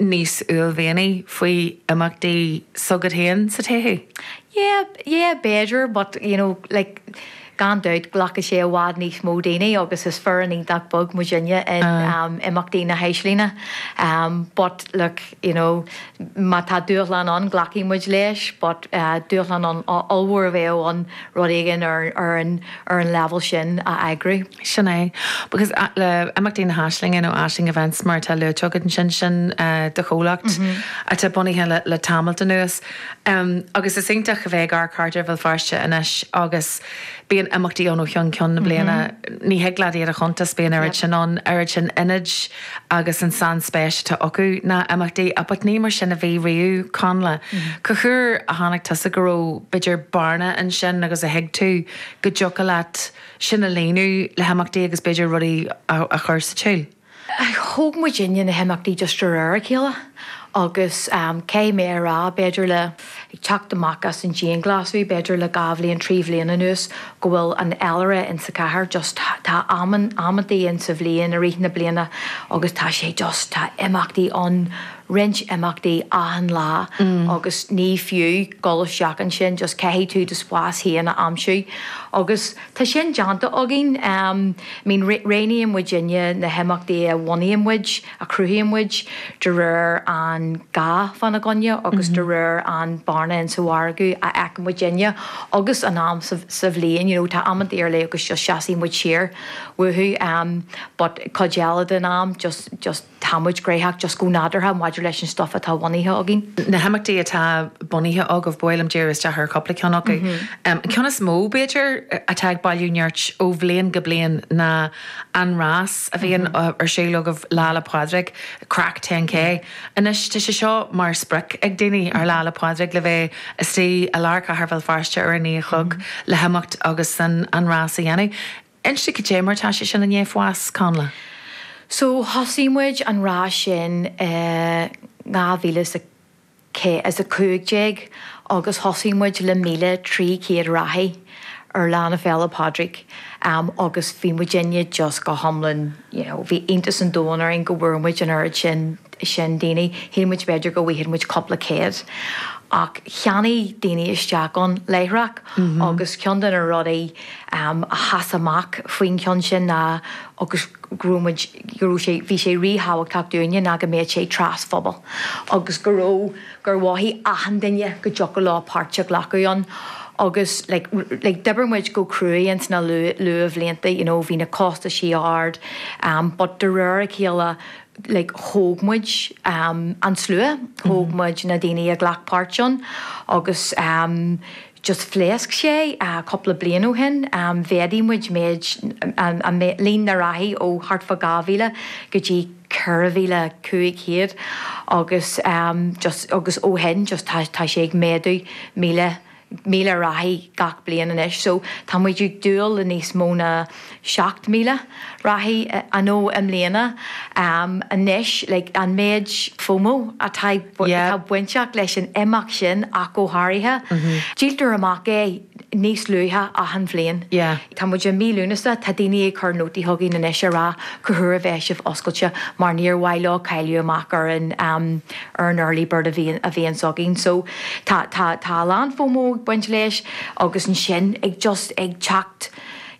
níos uaillmhianaí faoi imeachtaí s'agat féin sa todhchaí? Yeah, yeah b'fhéidir but you know like gan dabht glacfaidh sé i bhfad níos mó daoine agus is foireann iontach beag muid inne in imeachtaí na hAislinge but look you know má tá dúshlán ann glacfaidh muid leis but dúshlán ollmhór a bheadh ann rud éigin ar an leibhéal sin a eagrú. Sin é. Agus le imeachtaí na hAislinge nó Aisling Events mar atá luaite agat ansin, sin do chomhlacht atá bunaithe le tamalt anuas. Agus is iontach a bheith ag amharc thart ar Bhéal Feirste anois agus bíonn imeachtaí ann ó cheann ceann na bliana. Ní thig leat iad a chuntas, bíonn oiread sin ann, oiread sin ionaid, agus an sainspéis atá acu sna imeachtaí but ní mar sin a bhí riamh, Connla. Cén uair a chonaic tusa go raibh, b'fhéidir, bearna ansin agus a thuig tú go dtiocfadh leat sin a líonadh le himeachtaí agus b'fhéidir rudaí a chur sa tsiúl. Thóg muid inne na himeachtaí just de réir a chéile agus caithfidh mé a rá, b'fhéidir le. Ag teacht amach as an dianghlasáil, b'fhéidir le dhá bhliain, trí bhliain anuas, go bhfuil an féilire insa chathair, just tá amantaí insa bhliain i rith na bliana agus tá sé just, tá imeachtaí ann, roinnt imeachtaí achan lá agus ní fiú dhul isteach ansin, just caithfidh tú do spás féin a aimsiú. Agus tá sin déanta againn, I mean, roghnaíonn muid inne na himeachtaí a bhunaíonn muid, a chruthaíonn muid, de réir an gá fána gcoinne agus de réir an bearna in sa mhargadh a fheiceann muid inne agus an am sa bhliain, you know tá amanta ar leith agus just seasfaidh muid siar uathu em but cuid eile den am just, just tá muid gnoitheach just go nádúrtha maidir leis an stuff atá bunaithe againn. na himeachtaí atá bunaithe agaibh, bhuel em dírímis isteach ar chúpla ceann acu. Em an ceann is mó, b'fhéidir, atá ag bailiú nirt ó bhliain go bliain ná an rás, a bhíonn ar siúl agaibh Lá 'le Pádraig, Craic 10K. Anois, tá sé seo mar sprioc ag daoine ar Lá 'le Pádraig le bheith istigh i lár chathair Bhéal Feirste ar a naoi a chlog le himeacht agus an rás a dhéanamh. Inis domh cad é mar atá sé sin i ndiaidh fás, Connla? So, thosaigh muid an rás sin i 2000 is a. cúig déag agus thosaigh muid le 1,300 reathaí ar Lá na Féile Pádraig agus bhí muid inne just go hiomlán you know bhí iontas an domhain orainn go bhfuair muid an oiread sin sin daoine, shíl muid b'fhéidir go bhfaigheadh muid cúpla céad ach cheannaigh daoine isteach ann láithreach agus ceann de na rudaí a sheas amach faoin cheann sin ná agus go raibh muid go raibh sé, bhí sé ríthábhachtach dúinne go mbeadh sé trasphobail agus go raibh, gur mhothaigh achan duine go dtiocfadh leo páirt a ghlacadh ann agus like d'oibir muid go cruaidh ins na luathbhlianta you know bhí na costaisí ard but de réir a chéile like thóg muid an slua, thóg muid na daoine a ghlac páirt ann agus. just phléasc sé cúpla bliain ó shin, mhéadaigh muid méid an, líon na reathaí ó thart fá 2,000 go dtí 4,500 agus just, agus ó shin just tá, tá sé ag méadú 1,000, 1,000 reathaí gach bliain anois. So tá muid ag dúil le níos mó ná. 7,000 reathaí anó i mbliana anois like an méid FOMO atá atá bainteach leis an imeacht sin ach go háirithe. Díoltar amach é níos luaithe achan bhliain. Tá muid i mí Lúnasa, tá daoine ag cur nótaí chugainn anois ag rá cá huair a bheidh sibh oscailte mar níor mhaith leo cailliúint amach ar an ar an early bird a bhíonn a bhíonns againn. So tá tá tá a lán FOMO ag baint leis agus ansin ag just ag teacht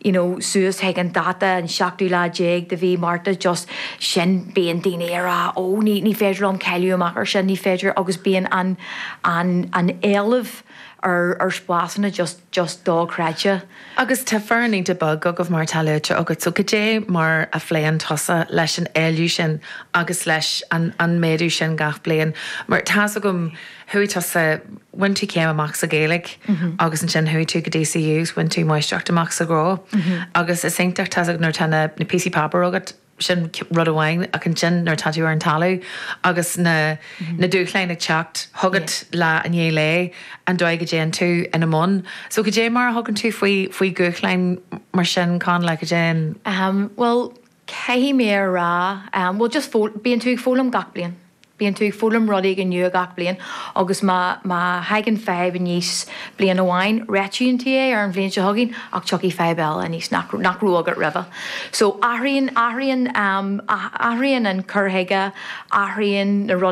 you know suas chuig an dáta an tseachtú lá déag de mhí Márta just sin bíonn daoine a rá oh ní ní féidir liom cailliúint amach ar sin ní féidir agus bíonn an an an t-éileamh ar ar spásanna just just do-chreidte. Agus tá foireann iontach beag agaibh mar atá luaite agat so cad é mar a phléann tusa leis an éileamh sin agus leis an an méadú sin gach bliain mar tá's agam chuaigh tusa, bhain tú céim amach sa Ghaeilge agus ansin chuaigh tú go DCU 's bhain tú máistreacht amach sa ghnó agus is iontach tá's agat nuair atá na píosaí páipéir agat sin rud amháin ach ansin nuair atá tú ar an talamh agus na na dúshláin ag teacht chugat lá i ndiaidh lae an dóigh a dtéann tú ina mbun so goidé mar a thugann tú faoi faoi dhúshláin mar sin Conn like goidé an Ahem, bhuel, caithfidh mé a rá, bhuel just foghlaim, bíonn tú ag foghlaim gach bliain, bíonn tú ag foghlaim rud éigin nua gach bliain agus má, má thagann fadhb aníos bliain amháin, réitíonn tú é ar an bhliain seo chugainn ach tiocfaidh fadhb eile aníos nach, nach raibh agat roimhe. So athraíonn, athraíonn, athraíonn an cur chuige, athraíonn na rudaí